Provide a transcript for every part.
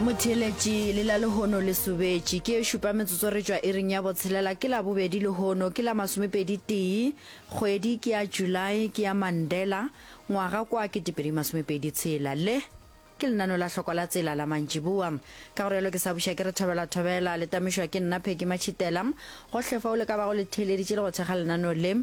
motheletši le la lehono le sobetši ke e šupa metsotso re tšwa iring ya botshelela ke la bobedi lehono ke la masomepedi tee kgwedi ke ya july ke ya mandela ngwaga kwa ketepedi masomepedi tshela le ke lenano la hloko la tsela la mantšiboa ka gore yalo ke sa buša ke re thobela thobela le tamišwa ke nna pheki matšhitela gohle fa o le ka bago le theeleditše le go thekga lenano le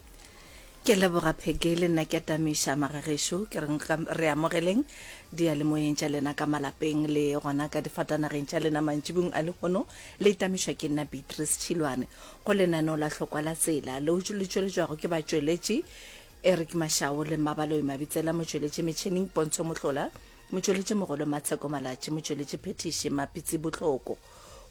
Ke leboga Peggy le nna ke atamiša magagešo ke reng re amogeleng diyalemoyeng tša lena ka malapeng le gona ka difatanageng tša lena mantšibung a lehono le itamišwa ke nna beatrice tšhilwane go lenaneo la hlokwa la tsela leo le tšweletšwago ke batšweletši eric mašao le mmabaloi mabitsela motšweletši metšhineng pontsho mohlola motšweletši mogolo matsheko malatši motšweletši phetiši mapitsi botlhoko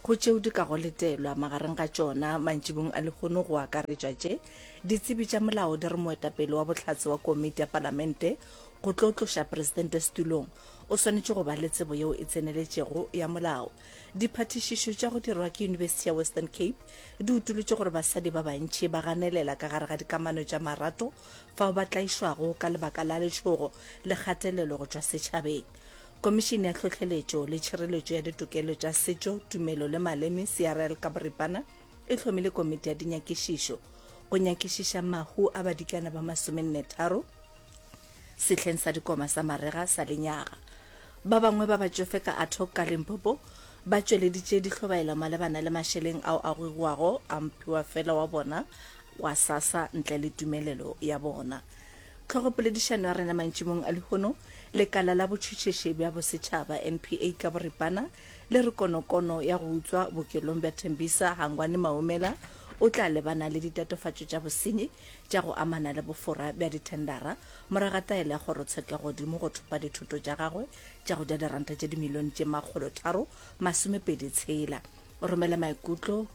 go tšeo di ka go letelwa, magareng ga tšona, mantšibong a lehono go akaretšwa tše, ditsebi tša molao di re moetapele wa bohlatse wa Komiti ya Palamente go tlo tloša Presidente setulong o swanetše go ba le tsebo yeo e tseneletšego ya molao. Diphathišišo tša go dirwa ke Yunibesithi ya Western Cape di utolotše gore basadi ba bantši ba ganelela ka gare ga dikamano tša marato fao ba tlaišwago ka lebaka la letšhogo le kgatelelo go tšwa setšhabeng. Komišene ya Tlhohleletšo le Tšhireletšo ya Ditokelo tša Setšo, Tumelo le Maleme, CRL ka boripana, e hlomile komiti ya dinyakišišo go nyakišiša mahu a badikana ba masomennetharo sehleng sa dikoma sa marega sa lenyaga. Ba bangwe ba batšofe ka Athock ka Limpopo ba tšweleditše dihlobaelo malebana le mašeleng ao a gogiwago a mphiwa fela wa bona wa sasa ntle le tumelelo ya bona. Hlogopoledišano ya rena mantšimong a lehono, Lekala la Botšhutšhisi bja Bosetšhaba, NPA, ka boripana le re konokono ya go utswa bookelong bja Tembisa, Hangwani Maumela o tla lebana le ditatofatšo tša bosenyi tša go amana le bofora bja dithendara morago ga taelo ya kgorotshekeggodimo go thopa dithoto tša gagwe tša go ja diranta tše dimilione tše makgolotharo masomepedi tshela. Romela maikutlo.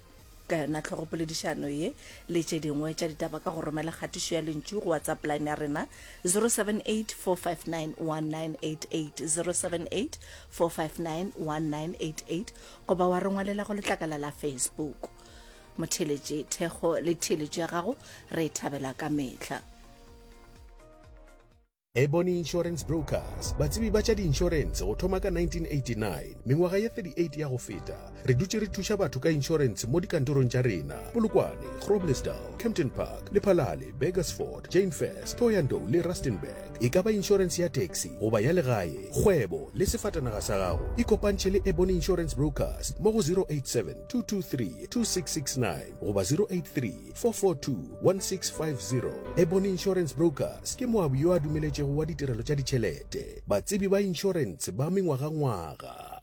ka yona tlhogopoledišano ye le tše dingwe tša ditaba ka go romela kgatišo ya lentšu go whatsapp line ya rena 0784591988 goba wa re ngwalela go letlakala la facebook motheeletše thekgo le theeletšo ya gago re e thabela ka mehla Ebony Insurance Brokers, batsebi ba tša diinšorense go thoma ka 1989. Mengwaga ye 38 ya go feta, re dutše re thuša batho ka inšorense mo dikantorong tša rena, Polokwane, Groblersdal, Kempton Park, Lephalale, Burgersfort, Jainfest, Thohoyandou le Rustenburg. E ka ba inšorense ya taxi goba ya legae, kgwebo le sefatanaga sa gago. Ikopantšhe le Ebony Insurance Brokers mo go 087 223 2669 goba 083 442-1650 Ebony Insurance Brokers ke moabi yo a dumeletšego wa ditirelo tša ditšhelete, batsebi ba inšorense ba mengwagangwaga.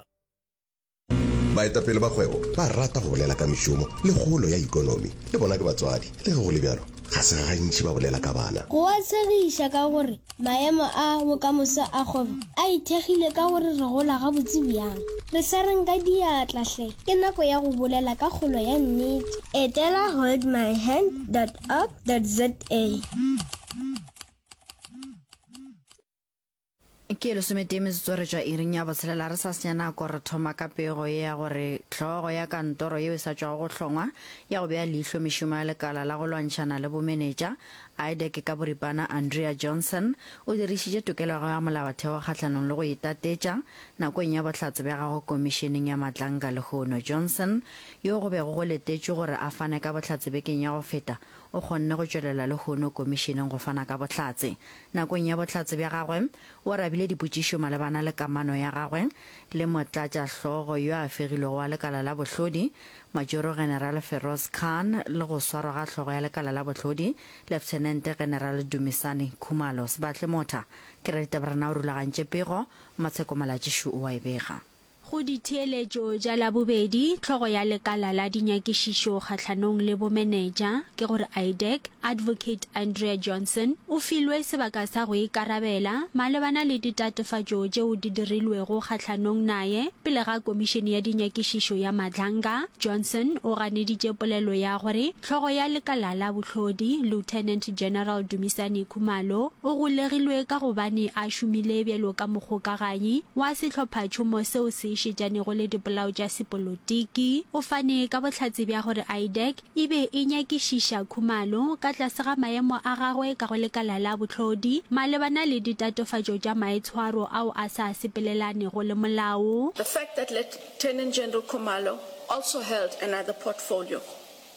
Baetapele ba kgwebo ba rata go bolela ka mešomo le kgolo ya ikonomi. Le bona ke batswadi. Le ge go le bjalo, ga se gantši ba bolela ka bana. Go a tshegiša ka gore Maemo a bokamoso a kgwebo a ithekgile ka gore re gola gabotse bjang. Re swareng ka diatla hle! Ke nako ya go bolela ka kgolo ya nnete. Etela holdmyhand dot org dot za. Ke lesometee metsotso re tšwa iring ya botshelela re sa senya nako re thoma ka pego ye ya gore hlogo ya kantoro yeo e sa tšwago go hlongwa ya go bea leihlo mešomo ya lekala la go lwantšhana le bomenetša Aideke ka boripana Andrea Johnson o dirišitše tokelo ya gagwe ya molaotheo kgahlanong le go itatetša nakong ya bohlatse bja gagwe Komišeneng ya Matlankga lehono. Johnson, yo go bego go letetšwe gore a fane ka bohlatse bekeng ya go feta, o kgonne go tšwelela lehono Komišeneng go fana ka bohlatse. Nakong ya bohlatse bja gagwe, o arabile dipotšišo malebana le kamano ya gagwe le motlatšahlogo yo a fegilwego wa lekala la bohlodi, Majoro General Feroz Khan le go swarwa ga hlogo ya lekala la bohlodi, Lieutenant General Dumisani Khumalo. Sebatle Motha ke raditaberana o rulagantše pego, Matsheko Malatšišu o a e bega. Go ditheeletšo tša Labobedi, hlogo ya lekala la dinyakišišo kgahlanong le bomeneja, ke gore IDEC, Advocate Andrea Johnson o filwe sebaka sa go ikarabela malebana le ditatofatšo tšeo di dirilwego kgahlanong naye pele ga Komišene ya Dinyakišišo ya Madlanga. Johnson o ganeditše polelo ya gore hlogo ya lekala la bohlodi, Lieutenant General Dumisani Khumalo, o golegilwe ka gobane a šomile bjalo ka mogokaganyi wa sehlophatšhomo seo se šetšanego le dipolao tša sepolotiki. O fane ka bohlatse bja gore IDAC e be e nyakišiša khumalo ka tlase ga maemo a gagwe ka go lekala la bohlodi malebana le ditatofatšo tša maitshwaro ao a sa sepelelanego le molao. The fact that Lieutenant General Khumalo also held another portfolio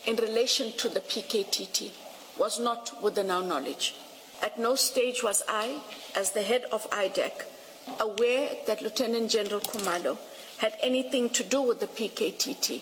in relation to the PKTT was not within our knowledge. At no stage was I, as the head of IDAC, aware that Lieutenant General Khumalo had anything to do with the PKTT.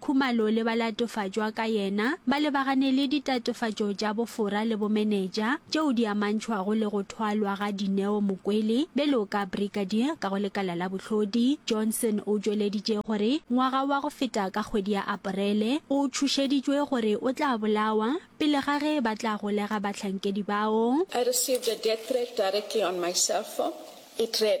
Khumalo le ba latofatšwa ka yena ba lebagane le ditatofatšo tša bofora le bomeneja tšeo di amantšhwago le go thwalwa ga Dineo Mokwele bjalo ka Brigadier ka go lekala la bohlodi. Johnson o tšweleditše gore ngwaga wa go feta ka kgwedi ya Aparele o tšhošeditšwe gore o tla bolawa pele ga ge ba tla golega bahlankedi bao. I received a death threat directly on my cell phone. It read,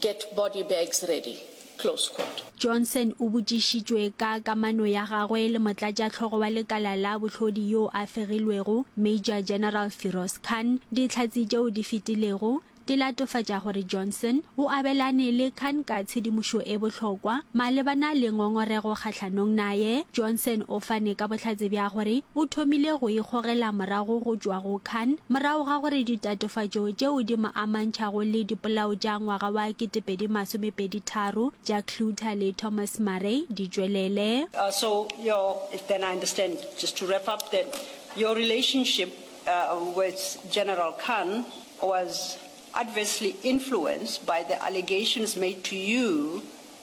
Get body bags ready close quote. Johnson o botšišitšwe ka kamano ya gagwe le motlatšahlogo wa lekala la bohlodi yo a fegilwego, Major General Firoz Khan, dihlatse tšeo di fetilego di latofatša gore Johnson o abelane le Khan ka tshedimošo e bohlokwa malebana le ngongorego kgahlanong naye. Johnson o fane ka bohlatse bja gore o thomile go ikgogela morago go tšwa go Khan morago ga gore ditatofatšo tšeo di mo amantšhago le dipolao tša ngwaga wa 2023 tša Cluter le Thomas Murray di tšwelele. Uh, so your, if then I understand, just to wrap up that your relationship uh, with General Khan was adversely influenced by the allegations made to you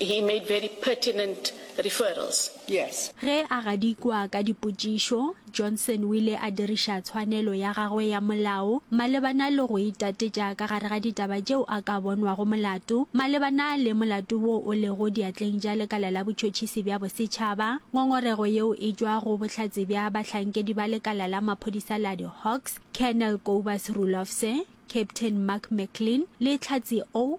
He made very pertinent referrals. Yes. Ge a gadikwa ka dipotšišo, Johnson o ile a diriša tshwanelo ya gagwe ya molao malebana le go itatetša ka gare ga ditaba tšeo a ka bonwago molato malebana le molato wo o lego diatleng tša Lekala la Botšhotšhisi bja Bosetšhaba. Ngongorego yeo e tšwa go bohlatse bja bahlankedi ba lekala la maphodisa la di-Hawks, Colonel Kobus Rulofse, Captain Mark McLean le Tlhatsi O.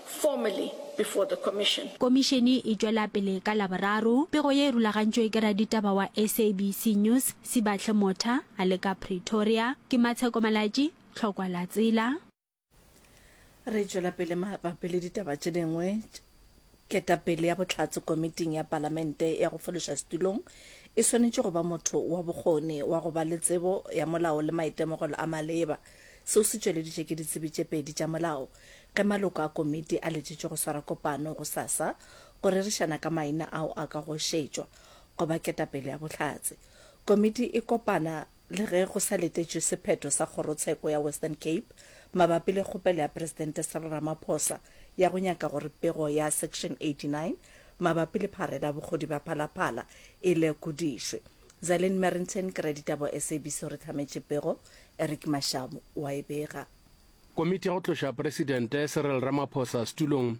formally before the Commission. Komišene e tšwela pele ka Laboraro. Pego ye e rulagantšwe ke raditaba wa SABC News, Sibahle Motha, a le ka Pretoria. Ke Matsheko Malatji, Tlhokwa la Tsela. Re tšwela pele mabapi le ditaba tše dingwe. Ketapele ya bohlatse komiting ya Palamente ya go fološa setulong e swanetše go ba motho wa bokgoni wa go ba le tsebo ya molao le maitemogelo a maleba. Seo se tšweleditšwe ke ditsebi tše pedi tša molao Ge maloko a komiti a letšitšwe go swara kopano gosasa go rerišana ka maina ao a ka go šetšwa go ba ketapele ya Bohlatse, komiti e kopana le ge go sa letetšwe sephetho sa Kgorotsheko ya Western Cape mabapi le kgopelo ya Presidente Cyril Ramaphosa ya go nyaka gore pego ya Section 89 mabapi le pharela bokgodi bja Phalaphala e lekodišwe. Zaline Merrington, Kereditabo, SABC, Re hlametše pego, Eric Mashabo wa e bega. Komiti ya go tloša Presidente Cyril Ramaphosa setulong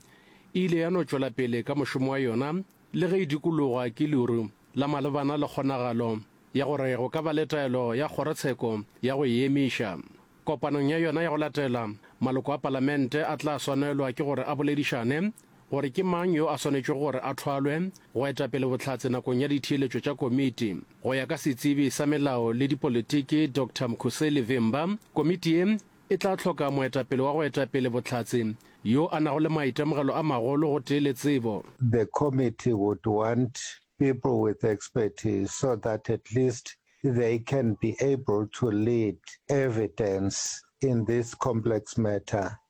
e ile ya no tšwela pele ka mošomo wa yona le ge e dikologwa ke leru la malebana le kgonagalo ya gore go ka ba le taelo ya kgorotsheko ya go e emiša. Kopanong ya yona ya go latela, maloko a Palamente a tla swanelwa ke gore a boledišane gore ke mang yo a swanetšwe gore a thwalwe go eta pele Bohlatse nakong ya ditheeletšo tša komiti. Go ya ka setsebi sa melao le dipolitiki Doctor Mkhuseli Vimba, komiti ye e tla hloka moetapele wa go eta pele Bohlatse yo a nago le maitemogelo a magolo gotee le tsebo. The committee would want people with expertise so that at least they can be able to lead evidence in this complex matter,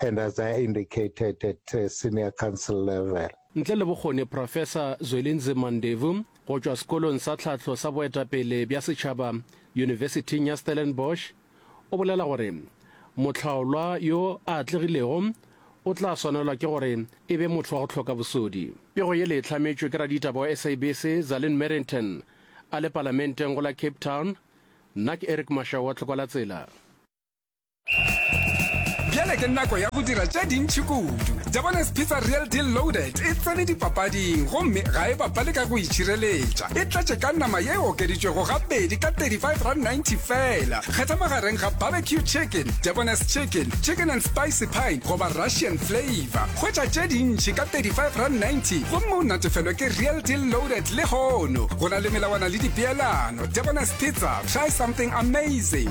and as I indicated at uh, senior council level. Ntle le bokgoni, Professor Zwelinzima Ndevu go tšwa sekolong sa tlhahlo sa boetapele bja setšhaba Yunibesithing ya Stellenbosch o bolela gore mohlaolwa yo a atlegilego o tla swanelwa ke gore e be motho wa go hloka bosodi. Pego yele e hlametšwe ke raditaba wa SABC Zalin Merrington a le palamenteng go la Cape Town. Nna ke Eric Mashau wa Tlhokwalatsela. bjale ke nako ya go dira tše dintšhi kudu jabones pizza real deal loaded e tsene dipapading gomme ga e bapale ka go itšhireletša e tlatše ka nama ye e okeditšwego gabedi ka 35.90 fela kgetha magareng ga barbecue chicken jabones chicken chicken and spicy pine goba russian flavor kgwetša tše dintšhi ka 35.90 gomme o natefelwe ke real deal loaded le hono go na le melawana le dipeelano jabones pizza try something amazing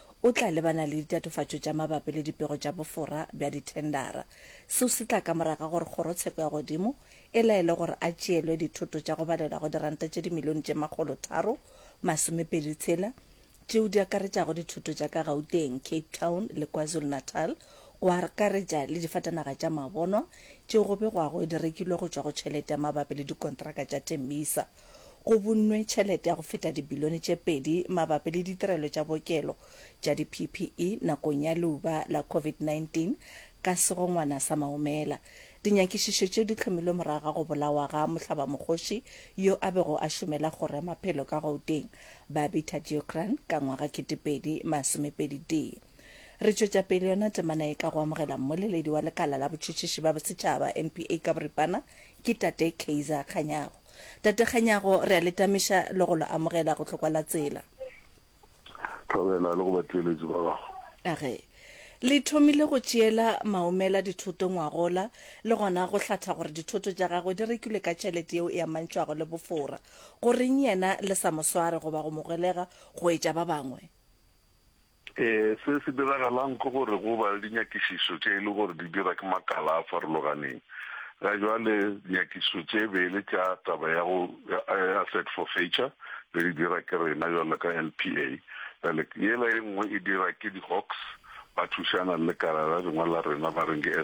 o tla lebana le ditatofatšo tša mabapi le dipego tša bofora bja dithendara. Seo se tla ka morago ga gore Kgorotsheko ya Godimo e laele gore a tšeelwe dithoto tša go balela go diranta tše dimilione tše makgolo tharo masomepedi tshela, tšeo di akaretšago dithoto tša ka Gauteng, Cape Town le KwaZulu-Natal, go akaretša le difatanaga tša mabonwa tšeo go begwago di rekilwe go tšwa go tšhelete ya mabapi le dikontraka tša Tembisa. Go bunnwe tšhelete ya go feta dibilione tše pedi mabapi le ditirelo tša bookelo tša di-PPE nakong ya leuba la COVID-19 ka segongwana sa Maumela. Dinyakišišo tšeo di hlomilwe morago ga go bolawa ga mohlabamokgoši yo a bego a šomela kgoro ya maphelo ka Gauteng, Babita Deocrane ka ngwaga kete pedi masome pedi tee. Re tšwetša pele yona temana ye ka go amogela mmoleledi wa lekala la botšhotšhiši ba bosetšhaba, NPA, ka boripana, ke Tate Kaizer Kganyago. Tate Kganyago, re a le tamiša le go lo amogela go hlokwa la tsela. Thobela le go batšweletši ba gago. A re, Le thomile go tšeela Maumela dithoto ngwagola, le gona go hlatha gore dithoto tša gagwe di rekilwe ka tšhelete yeo e amantšhwago le bofora. Goreng yena le sa mo sware goba go mo golega go etša ba bangwe? Se se diragalang ke gore go ba le dinyakišišo tše e le gore di dira ke makala a farologaneng. Ga jwale nyakišišo tše bele tša taba ya go ya set for feature re di dira ke rena jwalo ka LPA. Bjale yela e nngwe e dira ke di Hawks ba thušana le lekala la lengwe la rena ba reng ke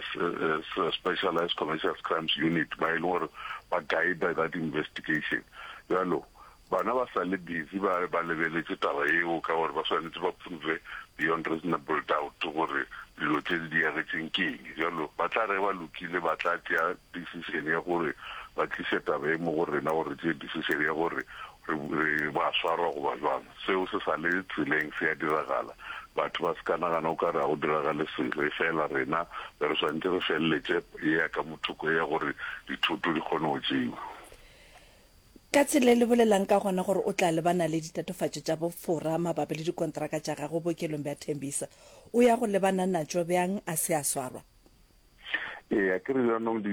Specialized Commercials Crimes Unit ba e le gore ba guider that investigation. Jwalo Bana ba sa le busy ba ba lebeletše taba yeo ka gore ba swanetše ba prove beyond reasonable doubt gore dilo tše di diagetšeng ke eng. Bjalo ba tla ge ba lokile ba tla tšea decision ya gore ba tliše taba ye mo go rena gore re tšee decision ya gore re re ba swarwa goba bjang. Seo se sa le tseleng se ya diragala. Batho ba se ka nagana o ka re ga go diragale selo efela rena be re swanetše re feleletše ye ya ka mothoko ye ya gore dithoto di kgone go tšeiwa. Ka tsela e lebelelang ka gona gore o tla lebana le ditatofatšo tša bofora mabapi le dikontraka tša gagwe bookelong bja Tembisa, o ya go lebana natšo bjang a se a swarwa? Eya, ke re bjanong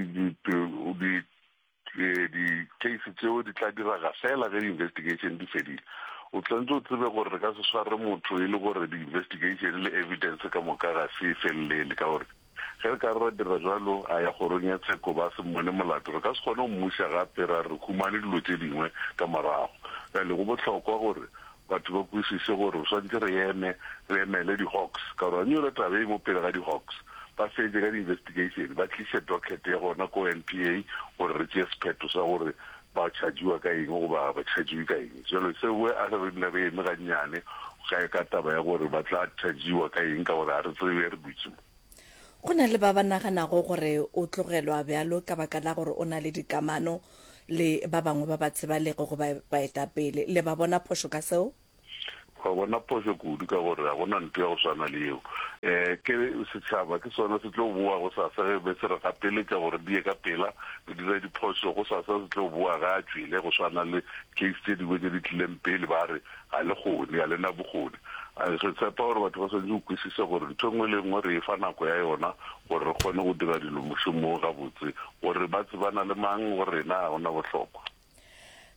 di-case tšeo di tla diraga fela ge di-investigation di fedile. O tswantše o tsebe gore re ka se sware motho e le gore di-investigation le evidence ka moka ga se e felelele ka gore, Ge re ka re ra dira bjalo, a ya kgorong ya tsheko ba se mmone molato, re ka se kgone go mmuša gape ra re humane dilo tše dingwe ka morago. Bjale go bohlokwa gore batho ba kwešiše gore re swanetše re eme re emele di Hawks ka gore ba nyole taba ye mo pele ga di Hawks, ba fetše ka di investigation ba tliše docket ya gona ko NPA gore re tšee sephetho sa gore Ba chargiwa ka eng goba ga ba chargiwe ka eng? Jwale se we a re nne re eme gannyane ga e ka taba ya gore ba tla chargiwa ka eng ka gore ga re tsebe re dutše mo. Go na le ba ba naganago gore o tlogelwa bjalo ka baka la gore o na le dikamano le ba bangwe ba ba tsebalego goba baetapele. Le ba bona phošo ka seo? Wa bona, phošo kudu, ka gore ga go na nto ya go swana le yeo. Ke setšhaba, ke sona se tlo bowa gosasa ge be se re gapeletša gore re die ka pela, re dire diphošo. Gosasa se tlo bowa ge a tšwele, go swana le case tše dingwe tše di tlileng pele, ba re ga le kgone, ga le na bokgone. Re tshepa gore batho ba swanetše go kwisisa gore nto e nngwe le e nngwe re e fa nako ya yona gore re kgone go dira dilo mošomong gabotse. Gore ba tsebana le mang go rena ga go na bohlokwa.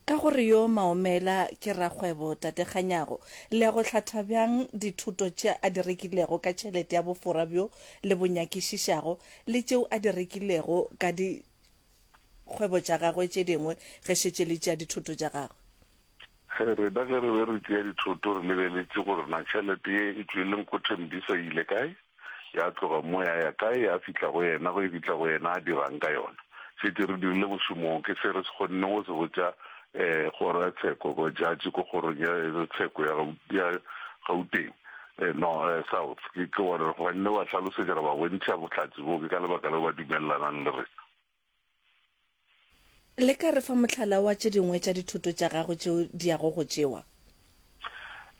Ka gore yo Maomela ke rakgwebo, Tate Kganyago, le ya go hlatha bjang dithoto tše a di rekilego ka tšhelete ya bofora bjo le bo nyakišišago le tšeo a di rekilego ka dikgwebo tša gagwe tše dingwe ge šetše le tšea dithoto tša gagwe? Ge re da ge re be re tšea dithoto re lebeletše gore na tšhelete ye e tšwele Nkgothe Mdisa e ile kae, ya tloga mo ya ya kae, ya fihla go yena, ge e fihla go yena a dira'ng ka yona. Šetše re dirile mošomo wo, ke se re se kgonne go se botša um kgoro ya tsheko, go judge ko kgorong ya tsheko ya ya Gauteng no South, ke ke gore re kgonne go ba hlalosetša, ra ba bontšha bohlatse boo, ke ka lebaka leo ba dumellanang le rena. Le ka re fa mohlala wa tše dingwe tša dithoto tša gago tšeo di yago go tšewa?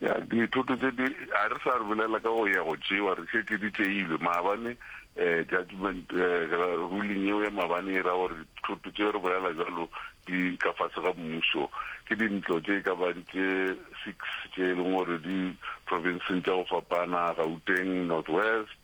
Ya, dithoto tše di, a re sa re bolela ka go ya go tšewa, re šetše di tšeilwe. Maabane, eh, judgment, eh, ruling yeo ya maabane e ra gore dithoto tšeo re bolela bjalo di ka fase ga mmušo. Ke dintlo tše e ka bang tše six tše e leng gore di provinseng tša go fapana, Gauteng, North West,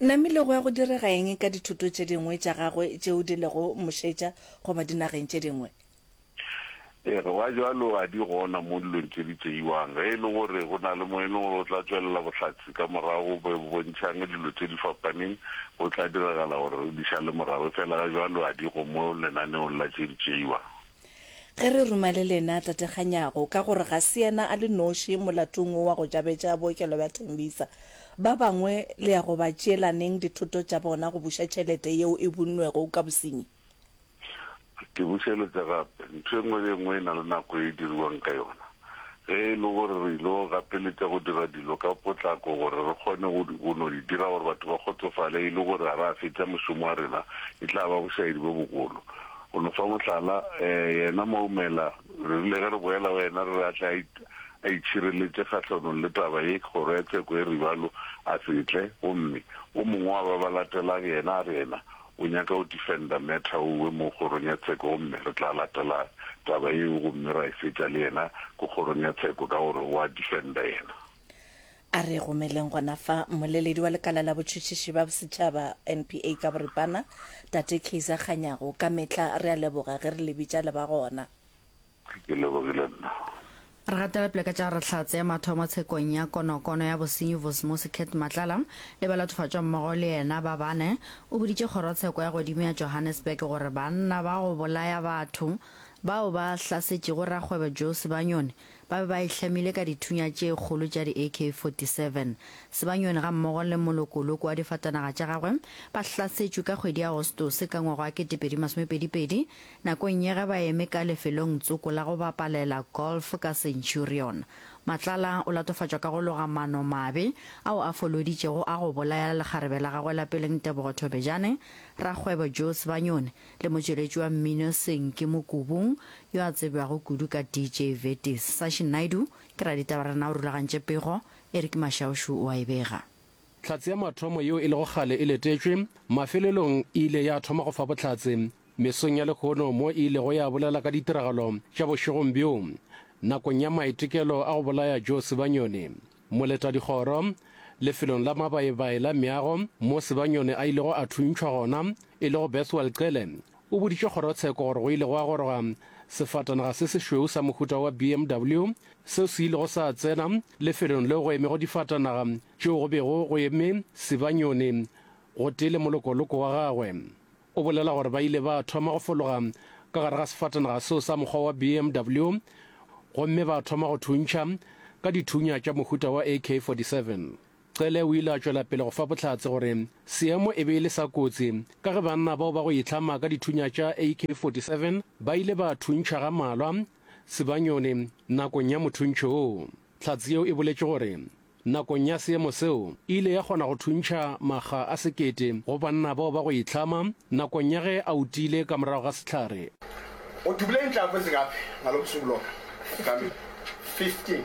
Namile go ya go direga eng ka dithoto tše dingwe tša gagwe tšeo di lego mošetša goba dinageng tše dingwe? Ee, ge wa bjalo a di gona mo dilong tše di tšeiwang. Ge e le gore go na le mo e leng gore o tla tšwelela bohlatse ka morago bo bontšhang dilo tše di fapaneng, go tla diragala gore re di šale morago, efela ga bjalo a di go mo lenaneong la tše di tšeiwang. Ge re ruma le lena Tate Kganyago, ka gore ga se yena a le noši molatong wo wa go tšabetša bookelo bja Tembisa, ba bangwe le ya go ba tšeelaneng dithoto tša bona go buša tšhelete yeo e bunnwego ka bosenyi? Ke bušeletša gape, ntho e nngwe le e nngwe e na le nako e e diriwang ka yona. ge e le gore re il'o gapeletša go dira dilo ka potlako gore re kgone go, go no di dira gore batho ba kgotsofale, e le gore a ra fetša mošomo wa rena, e tla ba bošaedi bjo bogolo. Go no fa mohlala, ee, yena Maumela, re rile ge re boela go yena re re a tle a, a itšhireletše kgahlanong le taba ye, kgoro ya tsheko e re, Ibalo a se tle, gomme o mongwe wa ba ba latelang, yena a re yena O nyaka go defender matter o we mo kgorong ya tsheko gomme re tla latela taba yeo gomme ra e fetša le yena ko kgorong ya tsheko ka gore o a defender yena. A re gomeleng gona fa, mmoleledi wa lekala la botšhotšhiši ba bosetšhaba, NPA, ka boripana, Tate Kaizer Kganyago, ka mehla re a leboga ge re le bitša le ba gona. Ke lebogile nna. Re gatela pele ka tša re tla tsea mathomo tshekong ya konokono ya bosenyi Vosimosi Kate Matlala le balathofatšwa mmogo le yena ba bane. O boditše kgorotsheko ya godimo ya Johannesburg gore banna ba go bolaya batho bao ba hlasetšego rakgwebo Joe Sebanyoni ba be ba e hlamile ka dithunya tše kgolo tša di AK 47. Sebanyoni gammogo le molokoloko wa difatanaga tša gagwe ba hlasetšwe ka kgwedi ya Agostose ka ngwaga wa 2022 Nakong ye ge ba eme ka lefelong tsoko la go bapalela golf ka Centurion, Matlala o latofatšwa ka go loga mano mabe ao a foloditšego a go bolayela lekgarebe la gagwe la peleng Tebogo Thobejane, rakgwebo Joe Sebanyoni le motšweletši wa mmino Senki Mokubung yo a tsebjago kudu ka DJ Vetis. Sashi Naidoo ke raditaba re na o rulagantše pego, Eric Mashaušu o a e bega. Tlhatse ya mathomo yeo e lego kgale e letetšwe, mafelelong e ile ya thoma go fa bohlatse mesong ya lekhono mo e ilego ya bolela ka ditiragalo tša bošegong bjo nakong ya maitekelo a go bolaya Joe Sebanyone, moletadikgoro, lefelong la mabaebae la meago mo Sebanyone a ilego a thuntšhwa gona e lego Bethwell Cele O boditše kgorotsheko gore go ile gwa goroga sefatanaga se sešweu sa mohuta wa BMW seo se ilego sa tsena lefelong leo go emego difatanaga tšeo go bego go eme Sibanyoni gotee le molokoloko wa gagwe. O bolela gore ba ile ba thoma go fologa ka gare ga sefatanaga seo sa mokgwa wa BMW gomme ba thoma go thuntšha ka dithunya tša mohuta wa AK-47. Cele o ile a tšwela pele go fa bohlatse gore seemo e be e le sa kotsi ka ge banna bao ba go itlhama ka dithunya tša AK-47 ba ile ba thuntšha ga malwa Sibanyoni nakong ya mothuntšho wo. Hlatse yeo e boletše gore nakong ya seemo seo e ile ya kgona go thuntšha makga a sekete go banna bao ba go itlhama nakong ya ge a utile ka morago ga sehlare. Udubule inhlamvu ezingaphi ngalo busuku lona? Kamilo, 15.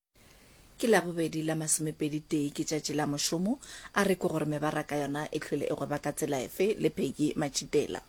Ke Labobedi la masomepedi tee ke tšatši la mošomo, a re ke gore mebaraka yona e hlwele e gweba ka tsela efe le Peggy Matšitela.